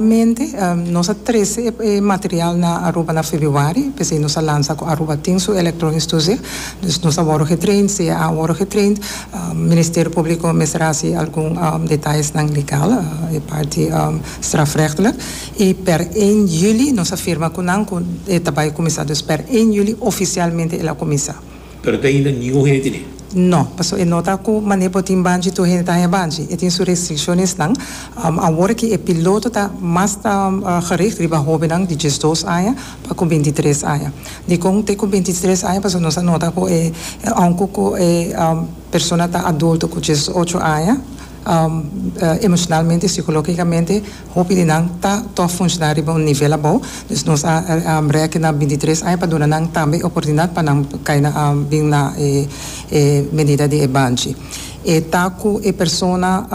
Finalmente, nos a trese e material na Aruba na Febuari, p'esei nos a lansa cu Aruba tin su electronic studio. Dus nos a worde getraind, sea a worde getraind. Ministerio Publico mester haci algun detallesnan legal, e parti strafrechtelijk. Y per een juli nos a firma cu nan cu e ta bay cuminsa. Dus per een juli oficialmente el a cuminsa. Pero ta hinda ningun hende tene. No, pasobra e nota cu manera bo tin banchi tur hende ta haña banchi. E tin su restriccionesnan. Awor aki e piloto ta mas ta gericht riba hobennan di diesdos aña pa cu bintitres aña. Dicon te cu bintitres aña? Pasobra nos a nota cu e aun cu cu e persona ta adulto cu diesdocho aña, emocionalmente y psicologicamente, Hopi di nan ta tòg funshná riba un nivel abou, dus nos a brèk'e na bintitres aña pa duna nan tambe e oportunidat pa nan kai na bin na e e medida di e banchi. E ta ku e persona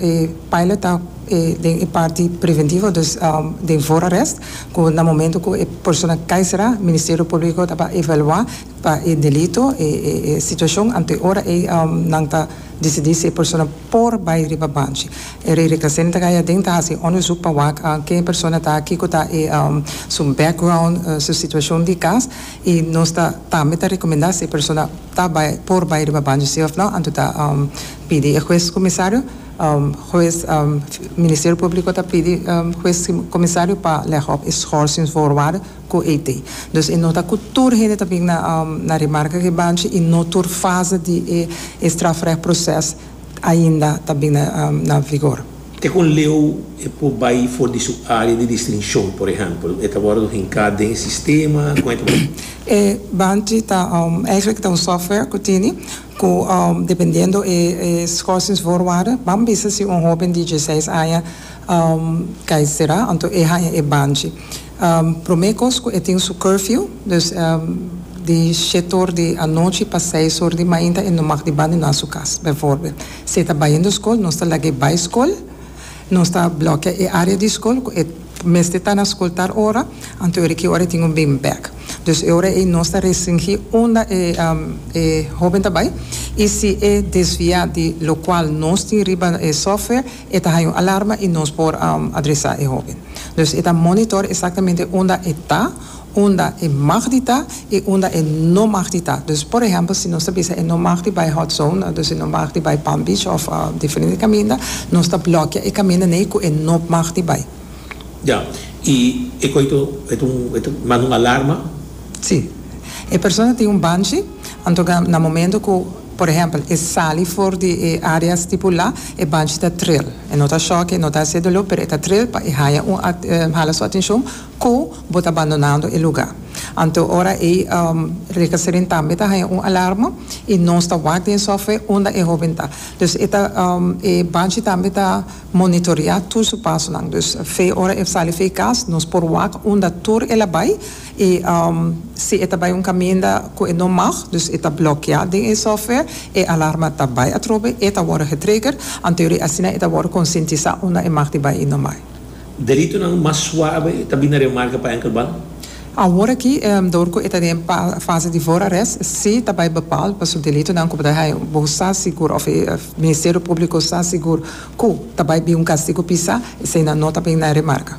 e pilot ta e den e parti preventivo, dus den voorarrest, ku na momento ku e persona kai será, Ministerio Públiko ta pa evaluá pa e delito e e situashon, anto e ora ei nan ta. Disidí si e persona por bai riba banchi. E rei Rekasen ta gaya den ta hasi onderzoek pa wak ken e persona ta, kiko ta e su background, su situacion di cas, i nos ta tambe ta recomenda si e persona ta bai, por bai riba banchi si of no, anto ta pidi e huez comisario, huez, Ministerio Publico ta pidi huez comisario pa leg op e schorsing voorwaarde. cu Haiti. Dus e nota cu tur hende ta bin na na remarca cu e banchi y no tur fase di e e strafrecht proces ainda ta bin na na vigor. Te cu un leu e por bay for di su area di distincion, por ehempel, e ta wordo hinca den e sistema, con e ta bay. E banchi ta eigenlijk ta un software cu tini cu dependiendo e e schorsingsvoorwaarden ban bisa si un hoben di dieseis aña cay sera, anto e haya e banchi. Prome kos ku e tin su curfew, dus di shete or di anochi pa seis or di mainta e no mag di bandona su kas. Bijvoorbeeld, si e ta bayendo skol, nos ta laga e bai skol, nos ta blòkea e área di skol ku e mester ta na skol tal ora, anto yori ki ora e tin un bin bèk. Dus e ora ei nos ta restringí unda e hóben ta bai i si e desviá di lokual nos tin riba e software, E ta haña un alarma i nos por adresá e hóben. Dus e ta monitor esaktamente unda e ta, unda e mag di ta i unda e no mag di ta. Dus por ehèmpel si nos ta bisa e no mag di bai Hot Zone, dus e no mag di bai Palm Beach òf diferente kaminda, nos ta blòkia e kaminda nei ku e no mag di bai. Ya. I e koito e ta manda un alarma? Sí. E persona tin un banchi. Anto na momento ku por ehèmpel e sali for di e área stipulá, e banchi ta tril. E no ta shòk, e no ta hasié doló, pero e ta tril pa e haña un hala su atenshon ku bo ta bandonando e lugá. Anto ora ei Rekaserin tambe ta haña un alarma i nos ta wak den sòftware unda e hóben ta. Dus e ta e banchi tambe ta monitoreá tur su pasonan. Dus fe ora e sali fe e kas nos por wak unda tur el a bai I si e ta bai un kaminda ku e no mag, dus e ta blokeá den e software, e alarma ta bai atrobe, e ta wòrdu getrigger, anteorie asina e ta wòrdu konsientisá unda e mag di bai i no bai. Deritonan mas suabe ta bini remarka pa enkel ban. Aworakí, dor ku e ta den fase di voorarrest, sí ta bai bepaal pa su delitonan ku bo ta haña. Bo sa sigur, òf e Ministerio Públiko sa sigur, ku ta bai bin un kastigu pisá, eseinan no ta bin na remarka.